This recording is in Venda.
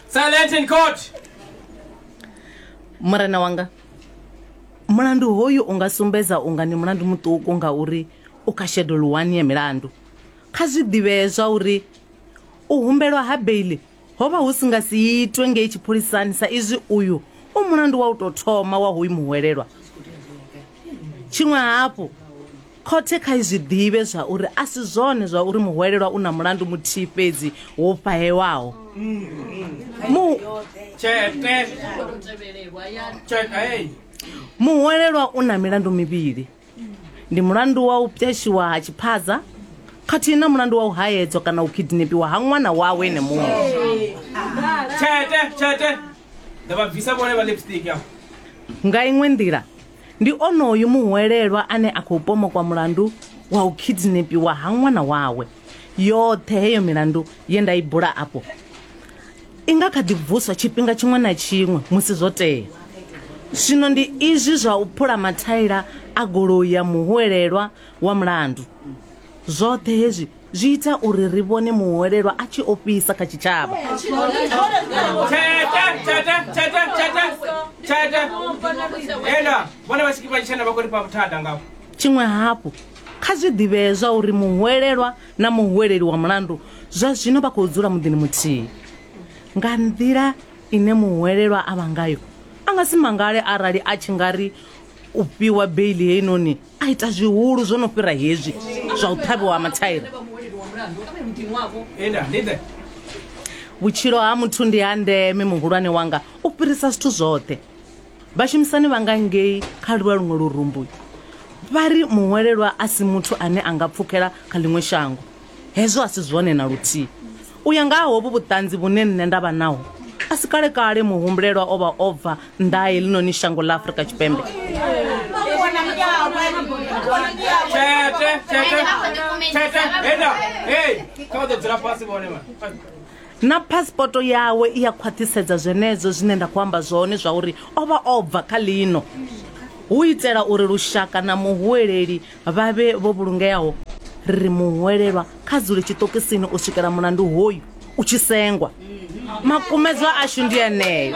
Silent in court. murena wanga mulandu hoyu u nga sumbedza unga ni mulandu muṱuku ngauri u kha shedulu wani ya milandu kha zwi ḓivhee zwa uri u humbelwa ha beili Ho vha hu si nga si itwe ngei tshipholisani sa izwi uyu u mulandu wa u tou thoma wa hoyu muhwelelwa. Tshiṅwe hafhu, khothe kha i zwi ḓivhe zwa uri a si zwone zwa uri muhwelelwa u na mulandu muthihi fhedzi wo fhahewaho. Mu Muhwelelwa u na milandu mivhili. ndi mulandu wa u pwashiwa ha tshiphaza khathihi na mulandu wa u haedzwa kana u kidnepiwa ha ṅwana wawe ene muṅwe tshete tshete nda vha bvisa vhone vha lipstick ya nga iṅwe nḓila ndi onoyu muhwelelwa ane a khou pomokwa mulandu wa u kidnepiwa ha ṅwana wawe yoṱhe heyo milandu ye nda i bula afho I nga kha ḓi vuswa tshifhinga tshiṅwe na tshiṅwe musi zwo tea. Zwino ndi izwi zwa u phula mathaila a goloi ya muhwelelwa wa mulandu. Zwoṱhe hezwi zwi ita uri ri vhone muhwelelwa a tshi ofhisa kha tshitshavha. Tshiṅwe hafhu, kha zwi ḓivhee zwauri muhwelelwa na muhweleli wa mulandu zwa zwino vha khou dzula muḓini muthihi nga nḓila ine muhwelelwa a vha ngayo a nga si mangale arali a tshi nga ri u fhiwa beili heinoni a ita zwihulu zwo no fhira hezwi zwa u ṱhavhiwa ha mathaira vhutshilo ha muthu ndi ha ndeme muhulwane wanga u fhirisa zwithu zwoṱhe Vhashumisani vha nga ngei kha lwa luṅwe lurumbu vha ri muhwelelwa a si muthu ane a nga pfukela kha ḽiṅwe shango. Hezwo a si zwone na luthihi. U ya nga ha hovhu vhuṱanzi vhune nṋe nda vha naho, a si kale-kale muhumbulelwa o vha o bva nnḓa ha heḽinoni shango ḽa Afrika Tshipembe. Na phasipoto yawe i a khwaṱhisedza zwenezwo zwine nda khou amba zwone zwa uri o vha o bva kha ḽino hu itela uri lushaka na muhuweleli vha vhe vho vhulungeaho. Ri ri muhuwelelwa kha dzule tshiṱokisini u swikela mulandu hoyu u tshi sengwa. Makumedzwa ashu ndi eneo.